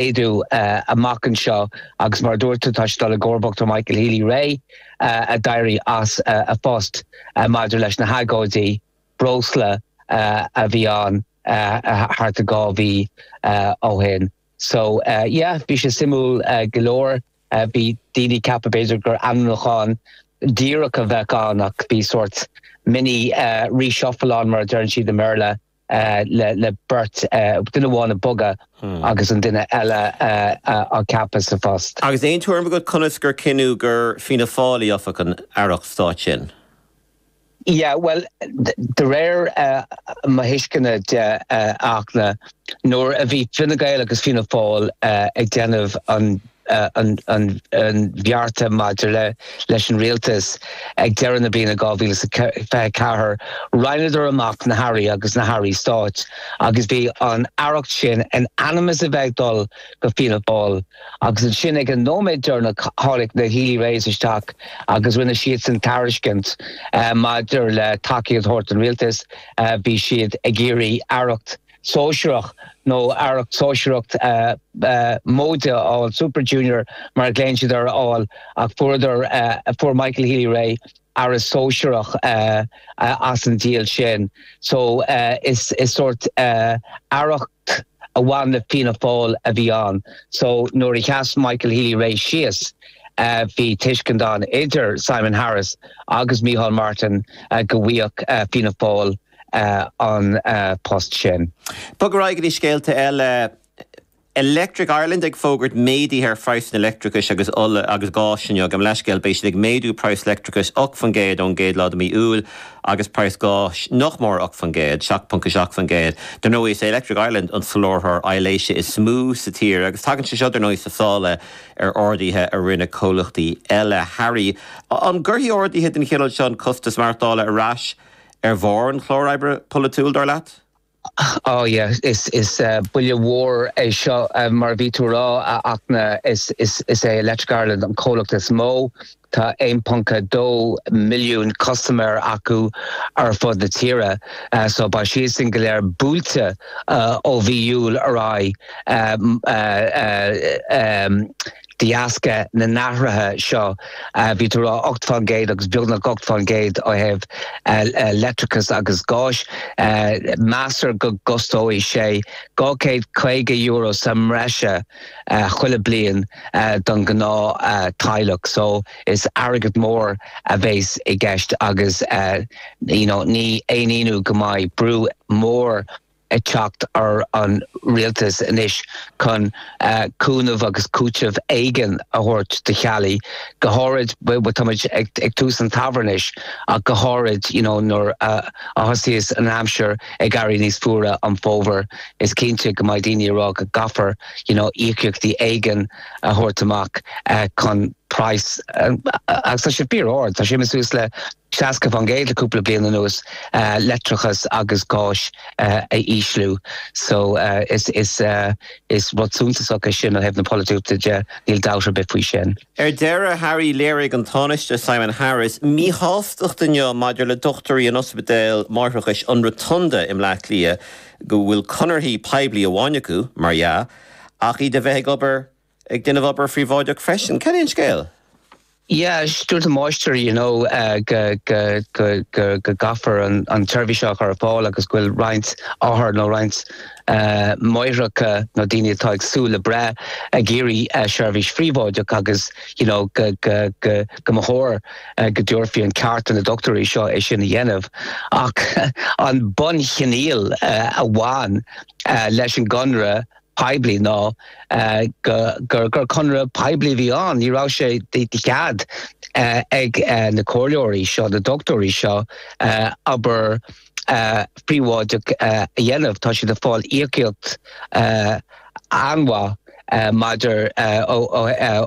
Éadáil amach anseo agus mar a dúirt tú tá sé ag dul i gcomharbacht ar Michael Healy-Rae a d'éirigh as a phost maidir leis na hagóidí breosla a bhí ann thart ar dhá mhí ó shin. So yeah bhí sé suimiúil go leor. Bhí daoine ag ceapadh b'fhéidir gur ainmniúchán díreach a bheadh ann ach bhí sórt mini reshuffle ann mar a deireann siad i mBéarla. le beirt, duine amháin a bogadh agus an duine eile a ceapadh sa phost. Agus aon tuairim agat conas gur cinneadh gur Fianna Fáilí a gheobhadh an Aireacht Stáit sin? Yeah, bhuel, de réir mo thuisceana de, nuair a bhí Fine Gael agus Fianna Fáil ag déanamh an an bheart maidir leis an rialtas ag deireadh na bliana 2024, roinneadar amach na hairí agus na hairí stáit agus bhí an aireacht sin in ainm is a bheith ag dul go Fianna Fáil. Agus ansin ag an nóiméad deireanach tháinig na Healy-Raes isteach agus rinne siadsan tairiscint maidir le tacaíocht a thabhairt don rialtas, bhí siad ag iarraidh aireacht, sóisearach nó Aireacht Sóisearacht móide a fháil, Super Junior mar a ghlaonn siad air a fháil ach fuaireadar, fuair Michael Healy-Rae Aire Sóisearach as an deal sin. So is sórt Aireacht a bhain le Fianna Fáil a bhí ann. So nuair a sheas Michael Healy-Rae síos bhí tuiscint ann idir Simon Harris agus Micheál Martin go bhfuigheadh Fianna Fáil a an post sin. Bogfaimid ar aghaidh go dtí scéalta eile. Electric Ireland ag fógairt méadaithe ar phraghsanna leictreachais agus ola agus gáis inniu. Gabh mo leithscéal, beidh siad ag méadú praghas leictreachais 8% ón gcéad lá de mhí Iúil agus praghas gáis nach mór 8%, 7.7%. Dar ndóigh is é Electric Ireland an soláthróir aibhléise is mó sa tír agus tagann sé seo dar ndóigh sna sála ar ardaithe a rinne comhlachtaí eile. Harry, an gcuirfidh ardaithe den chineal seo an costas maireachtála ar ais? Ar bharr an chlár oibre polaitiúil, dar leat? Oh yeah, is buille mhór é seo, mar a bhí tú a rá, ach na is é Electric Ireland an comhlacht is mó, tá 1.2 milliún custaiméir acu ar fud na tíre, so beidh siad sin go léir buailte ó mhí Iúil ar aghaidh. De dheasca na n-athruithe seo, bhí tú a rá 8 fán gcéad agus beagnach 8 fán gcéad ó thaobh leictreachais agus gáis. Meastar go gcostóidh sé €250 sa mbreise chuile bhliain don ghnáth teaghlach. So is airgead mór a bhéas i gceist agus you know ní haon ionadh go mbeidh brú mór ag teacht ar an rialtas anois chun cúnamh agus cúiteamh éigin a thabhairt do theaghlaigh, go háirid, bhuel, tá muid ag tús an tsamhraidh anois, ach go háirid, you know, nuair a thosaíos an aimsir ag éirí níos fuaire san fhómhar, is cinnte go mbeidh daoine ag rá go gcaithfear, you know, íocaíochtaí éigin a thabhairt amach chun praghas, agus tá sé fíor ard, tá sé suas le. 60% le cúpla bliain anuas leictreachas agus gáis a ísliú so is is is rud suntasach é sin ó thaobh na polaitíochta de, níl dabht ar bith faoi sin. Ar deireadh Harry léirigh an Tánaiste Simon Harris míshástacht inniu maidir le dochtúirí in ospidéal máithreachais an Rotunda i mBleá Cliath go bhfuil conarthaí poiblí amháin acu, mar dhea, ach iad a bheith ag obair Ag déanamh obair phríobháideach freisin, cén scéal? Yeah, dúirt an máistir you know go go go go go gcaithfear an an tseirbhís seo a chur ar fáil agus go bhfuil roinnt othar nó roinnt máithreacha nó daoine atá ag súil le breith ag iarraidh seirbhís phríobháideach agus you know go go go go mba chóir go dtabharfaí an ceart do na dochtúirí seo é sin a dhéanamh ach an bunchoinníoll a bhain leis an gconradh poiblí ná gur conradh poiblí a bhí ann. Ní raibh sé de chead ag na comhairleoirí seo, na dochtúirí seo, obair phríobháideach a dhéanamh. Tá siad ag fáil íocaíocht an-mhaith maidir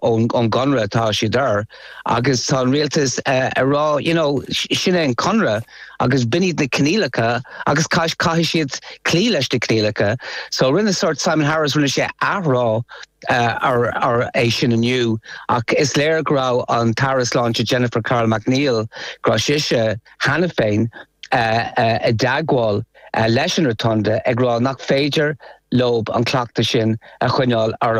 ón gconradh atá siad ar agus tá an rialtas ag rá, you know, sin é an conradh. agus b'in iad na coinníollacha agus caith caithfidh siad cloí leis na coinníollacha. So rinne sórt Simon Harris rinne sé athrá ar ar é sin inniu ach is léir go raibh an tAire Sláinte Jennifer Carroll MacNeill go raibh sise cheana féin i dteagmháil leis an Rotunda ag rá nach féidir leob an cleachtadh sin a choinneáil orab.